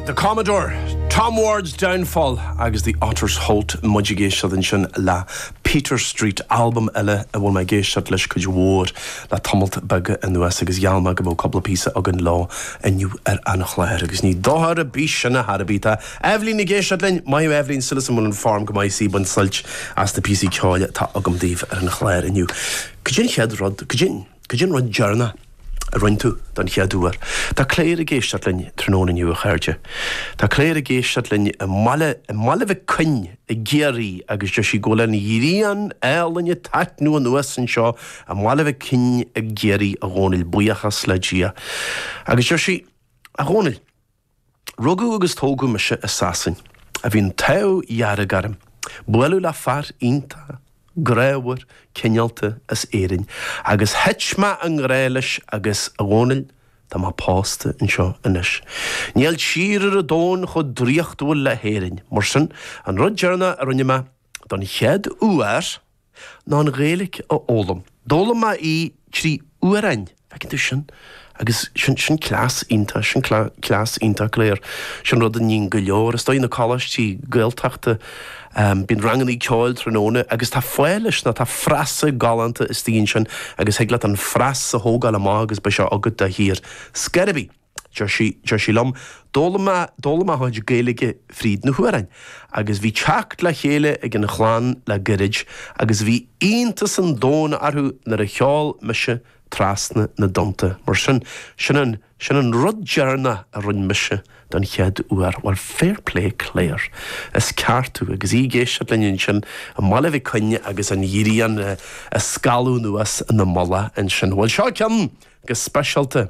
The Commodore, Tom Ward's Downfall agus The Otter's Holt muid ag éisteacht ansin le Peter Street, albam eile a bhfuil mé ag éisteacht leis cuid mhór le tamalt beag anuas agus gheall mé go mbeadh cúpla píosa againn leo inniu ar an chlár agus ní dochar ar bith sin ach ar bith. Tá Eibhlín ag éisteacht linn, maith thú Eibhlín, súil agam go bhfuil an form go maith is í ag baint suilt as na píosaí ceoil atá agam daoibh ar an chlár inniu. Cad é an chéad rud, cad é an. Cad é an rud deireanach a rinne tú don chéad uair? Tá Claire ag éisteacht linn tráthnóna inniu, a chairde. Tá Claire ag éisteacht linn i mbaile, i mBaile Mhic Coinn i gCiarraí agus deir sí go bhfuil an ghrian álainn ag taitneamh anuas anseo i mBaile Mhic Coinn i gCiarraí, a Dhomhnaill, buíochas le Dia. Agus deir sí, a Dhomhnaill. Rugadh agus tógadh mise i Sasain. Bhí an t-ádh dearg orm bualadh le fear iontach grámhar cineálta as Éirinn agus thit mé i ngrá leis agus, a Dhomhnaill, tá mé pósta anseo anois. Níl tír ar an domhan chomh draíochtúil le hÉirinn. Mar sin, an rud deireanach a rinne mé, don chéad uair, ná an Ghaeilic a fhoghlaim. D'fhoghlaim mé í trí amhráin. Feiceann tú sin? Agus sin, sin cleas iontach, sin cleas iontach go léir. Sin rud a níonn go leor. Is dóigh, na coláistí Gaeltachta, bíonn rangannaí ceoil tráthnóna agus tá fáth leis ná tá frasa galánta istigh ansin agus thig leat an frása a thógáil amach agus beidh sé agat dáiríre. Scéal ar bith, deir sí liom, D'fhoghlaim mé, d'fhoghlaim mé mo chuid Gaeilge fríd na hamhráin. Agus bhí teacht le chéile ag an chlann le goirid agus bhí iontas an domhain orthu nuair a cheol mise trasna na dtonnta mar sin. Sin an, sin an rud deireanach a rinne mise don chéad uair. Bhuel, fair play Claire. Is ceart tú. Agus í ag éisteacht linn ansin i mBaile Mhic Coinn agus an ghrian ag scalladh anuas ina mullach ansin. Bhuel, seo ceann go speisialta.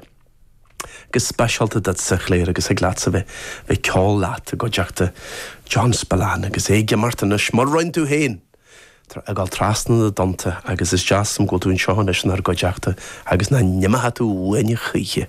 go speisialta duitse, a Claire agus thig leatsa bheith ag ceol leat i gcuideachta John Spillane agus é ag imirt anois mar rinne tú féin ag gabháil trasna na dtonnta agus is deas liom go bhfuil tú anseo anois inár gcuideachta agus nach n-imeoidh tú uainne choíche.